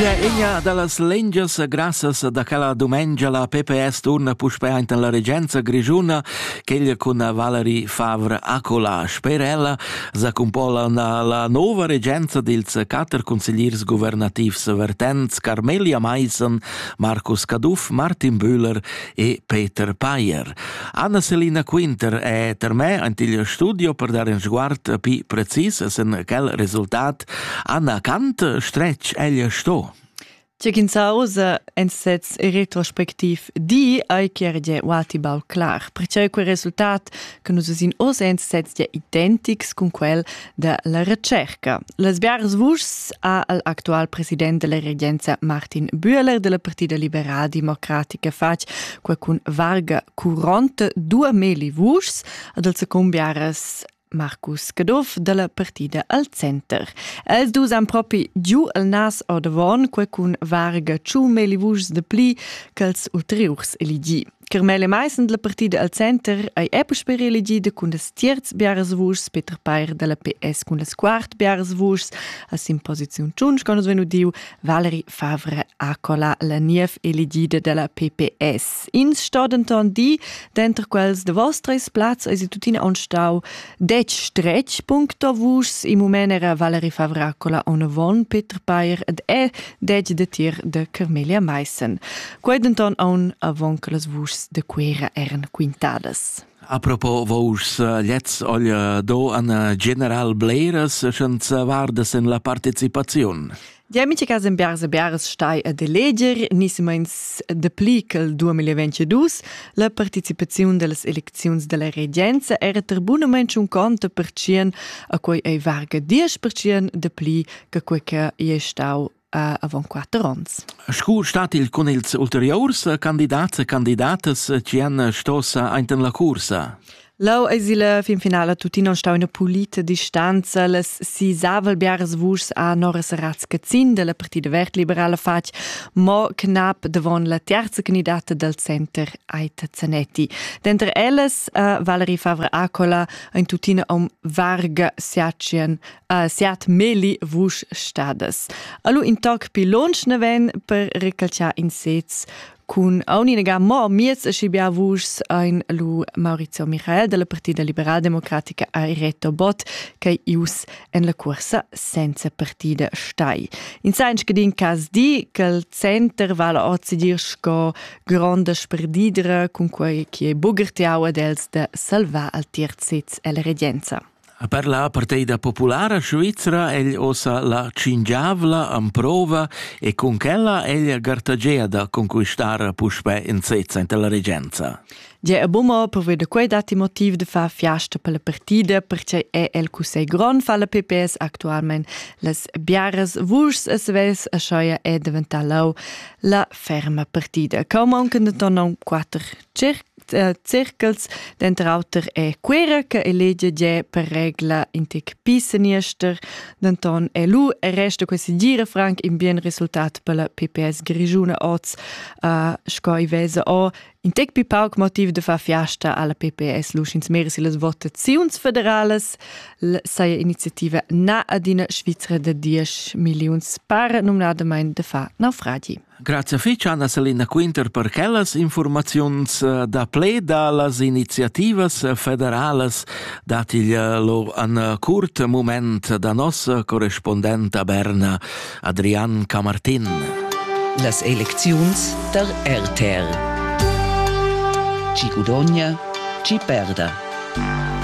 Lia egna dallas lengias grassas da quella dumengia la PPS turna puspei aint la regenza grischuna, quella cun Valerie Favre Accola. Sper ella s'accumpogla la nova regenza dils quater consigliers governativs vertents Carmelia Maissen, Markus Caduff, Martin Bühler e Peter Payer. Anna-Selina Quinter è per me aint il studio per dare un sguard più precis sen quel resultat Anna Cante stretg ella sto. Tge ch'ins sa usa en sez e retrospectiv di ei chiar gie uati bau clar. Perciò quel resultat che nus usin oz en sez gie identics cun quel de la recerca. Las biaras vuschs ha al actual president della regenza Martin Bühler della Partida Liberala Democratica fatg quel cun varga curonte due meli vuschs ad el secun biaras Marcus Caduff dalla partida al center. Els dus han propi giu el nas ordavon, quei cun varga ciu meli vuschs de pli ch'els ulteriurs eligi. Carmele Meissen della partida al center ei epusperi elegida cun das tierz biaras vuschs, Peter Peir della PS cun das quart biaras vuschs, a sin posiziun tschun, con venu diu, Valerie Favre Acola la niev elegida della PPS. Ins sto denton dir, denter quels de vostres plaz eisi tuttina on stau dec stretg puncto vuschs, i mument era Valerie Favracola on von Peter Peyer ed è dec de tir de Carmelia Meissen. Quei denton on avon che las vuschs de Quera eran quintadas. A propos vouschs lets olja do an general bleiras sch'ans vardas en la participaziun. Ja miticas in biars e biars stai ad eleger, nissimains dapli ch'el 2022, la participaziun dallas elecziuns dalla regenza era ter bunamain un conto percient a quei ei varga 10% dapli che quei che ei stau uh, avant quatter onns. Scu stat il con ils ulteriors candidats e candidatas che han sto sa ainten la cursa? Lau eis il fin finala tuttina stau ina pulita distanza. Las si savel biaras vuschs a Noras Razcazzin della Partida Vertliberala fatg mo knap davon la terza candidata dal center Aita Zanetti. Denter ellas uh, Valerie Favre Acola ein tuttina um varga siatien uh, siat meli vusch stadas. Allu in toc pi lunsch neven per recalciar in sez Cun auninaga mo miez e bia vuschs ein lu Maurizio Michael dalla Partida liberaldemocratica a Reto Bott ch'ei ius en la cuorsa senza partida stai. In sainz che din cas di che il center vala oz dir sco gronda sperdidra cun quei che è bugertiau ad els da salvar al tier sez el regenza. Ha parlà parteida populara svizra egl ussa la tschingiavla amprova e cun quella egl gartagea da conquistar puspè in sez enta la regenza. Gia a Bummer provi da quei datti motiv de far fiasta per la partida perché è el cussegl grond fa la PPS actualment las biaras vuschs e sveis a schoia è diventà lau la ferma partida. Com anche de tonom quatter circels, denter auter è Quera che elegia ge per regla in tec piseniester, denton è lu e resta quasi gira franc in bien resultat per la PPS Grigiuna oz, uh, sco i vesa o in tec pi pauc motiv de far fiasta alla PPS Luschins Meres e las votaziuns federales, saia iniziativa na adina Svizra de 10 milliuns para numnadamain de fa naufragi. Grazia fetg Anna Selina Quinter per quellas informaziuns eh, da ple da las iniziativas federalas dat il eh, lo an curt moment da nos correspondent a Berna Adrian Camartin. Las elecziuns der RTR. Ci gudogna, ci perda.